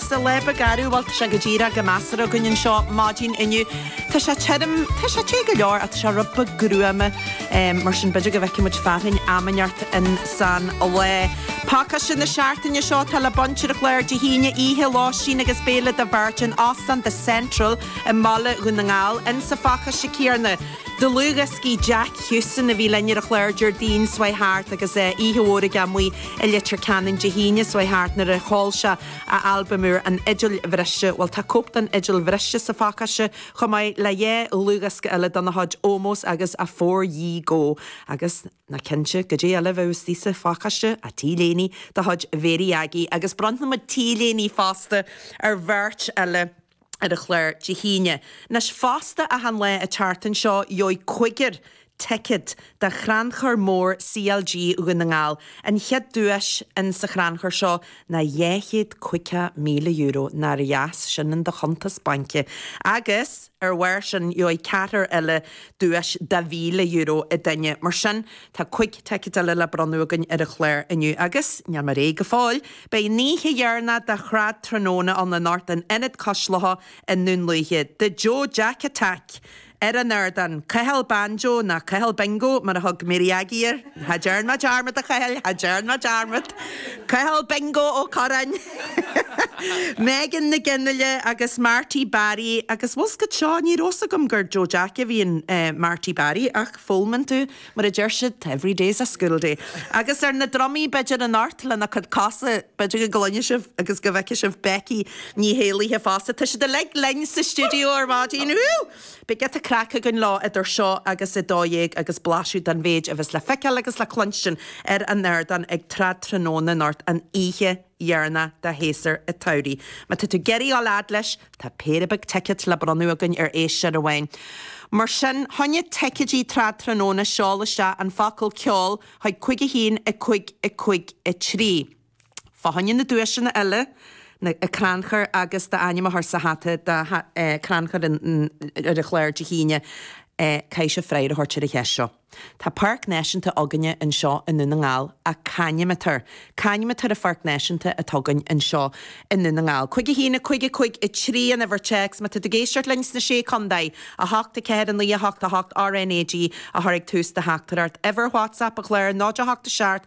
Celeb ag gaire, bhuel tá sé go díreach go measartha againn anseo maidin inniu. Tá sé tirim, tá sé te go leor ach tá sé rud beag gruama, mar sin b'fhéidir go bhfeicfidh muid fearthainn am inteacht insan lá. Pacáiste na seachtaine seo, atá le baint ar an chlár Dé hAoine oíche, lóistín agus béile do bheirt in Óstán The Central i mBaile Dhún na nGall. In sa phacáiste céanna, dlúthdhioscaí Jack Houston a bhí linn ar an chlár Déardaoin seo chuaigh thart agus oíche mhór aige amuigh i Leitir Ceanainn Dé hAoine seo chuaigh thart nuair a sheol sé a albam úr An Fhidil Bhriste. Bhuel, tá cóip den fhidil bhriste sa phacáiste, chomh maith le dhá dhlúthdhiosca eile dena chuid, Ómós agus Afore Ye Go. Agus, ná cinnte, goidé eile a bheadh istigh sa phacáiste ach T-léiní de chuid Mhary Aggie, agus bronnfaimid T-léiní fosta ar bheirt eile. ar an chlár Dé hAoine. Anois fosta achan lá an tseachtain seo gheobhaidh cúigear ticéad do Chrannchur Mór CLG Dhún na nGall. An chéad duais in sa chrannchur seo ná dhá chéad caoga míle euro, nár dheas sin in do chuntas bainc? Agus ar bharr sin gheobhaidh ceathrar eile duais de mhíle euro an duine. Mar sin tá cúig ticéad eile le bronnadh againn ar an chlár inniu agus níl mé réidh go fóill! Beidh an oíche dheireanach de Thrad Tráthnóna ann anocht in Ionad Cois Locha i nDún Lúiche. The Joe Jack Attack ar an ardán. Cathal Banjo, nó Cathal Bingo mar a thug Mary Aggie air. Cha ndéan muid dearmad, a Chathail, cha ndéan muid dearmad! Cathal Bingo Ó Curráin, Megan Nic Fhionnghaile agus Marty Barry agus, bhfuil 's agat seo, ní raibh 's agam gur Joe Jack a bhí in Marty Barry ach foghlaimíonn tú. Mar a deir siad, every day's a school day. Agus ar na drumaí, b'fhéidir anocht lena cuid cosa. B'fhéidir go gcluinfidh sibh agus go bhfeicfidh sibh Becky Ní hÉallaithe fosta. Tá siad uilig linn sa stiúideo ar maidin. Beidh giota craic againn leo idir seo agus a dó dhéag agus blaiseadh den mhéid a bheas le feiceáil agus le cluinstin ar an ardán ag Trad Tráthnóna anocht an oíche dheireanach de shéasúr an tsamhraidh. Má tá tú ag iarraidh á laghad leis, tá péire beag ticéad le bronnadh againn ar éisteoir amháin. Mar sin, fá choinne ticéidí Trad Tráthnóna seol isteach an focal ceol chuig 51553. Fá choinne na duaiseanna eile, an crannchur agus d'ainm a chur sa hata do chrannchur an chláir Dé hAoine. Caithfidh sibh freagra a thabhairt ar an cheist seo. Tá Páirc Náisiúnta againne anseo i nDún na nGall ach c'ainm atá air? C'ainm atá ar an Pháirc Náisiúnta atá againn anseo i nDún na nGall. Cúig a haon, a cúig, a cúig a trí an uimhir téacs má tá tú ag éisteacht linn sna sé contae, a hocht, a ceathair, a naoi, a hocht, a hocht, RNAG a chur ag tús do theachtaireacht. Uimhir WhatsApp an Chláir, 08 7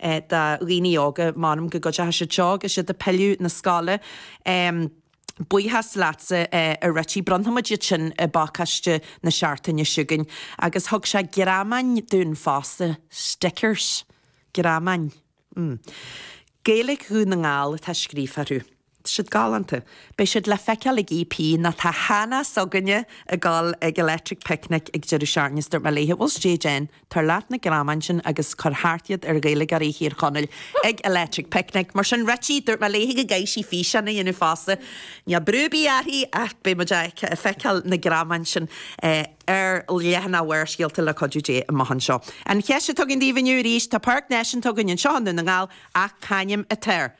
do dhaoine óga. M'anam go gcuideochadh siad seo agus siad a' pilleadh 'na scoile. Buíochas leatsa a Richie. Bronnfaimid iad sin i bpacáiste na seachtaine seo chugainn. Agus thug sé greamáin dúinn fosta. Stickers. Greamáin. Gaeilic Dhún na nGall atá scríofa orthu. Tá siad galánta. Beidh siad le feiceáil ag EP, ná tá Hana s'againne ag goil ag Electric Picnic ag deireadh seachtaine is dúirt mé léithe, bhuel stage end, tabhair leat na greamáin sin agus cuir thart iad ar Ghaeilgeoirí Thír Chonaill ag Electric Picnic, mar sin Richie, dúirt mé léithe go gcaithfidh sí físeán a dhéanamh fosta. Níl brú ar bith uirthi ach beidh muid ag feiceáil na greamáin sin ar leathanach Bharrscéalta le cuidiú Dé amach anseo. An cheist atá againn daoibh inniu arís, tá páirc náisiúnta againn anseo i nDún na nGall ach c'ainm atá air?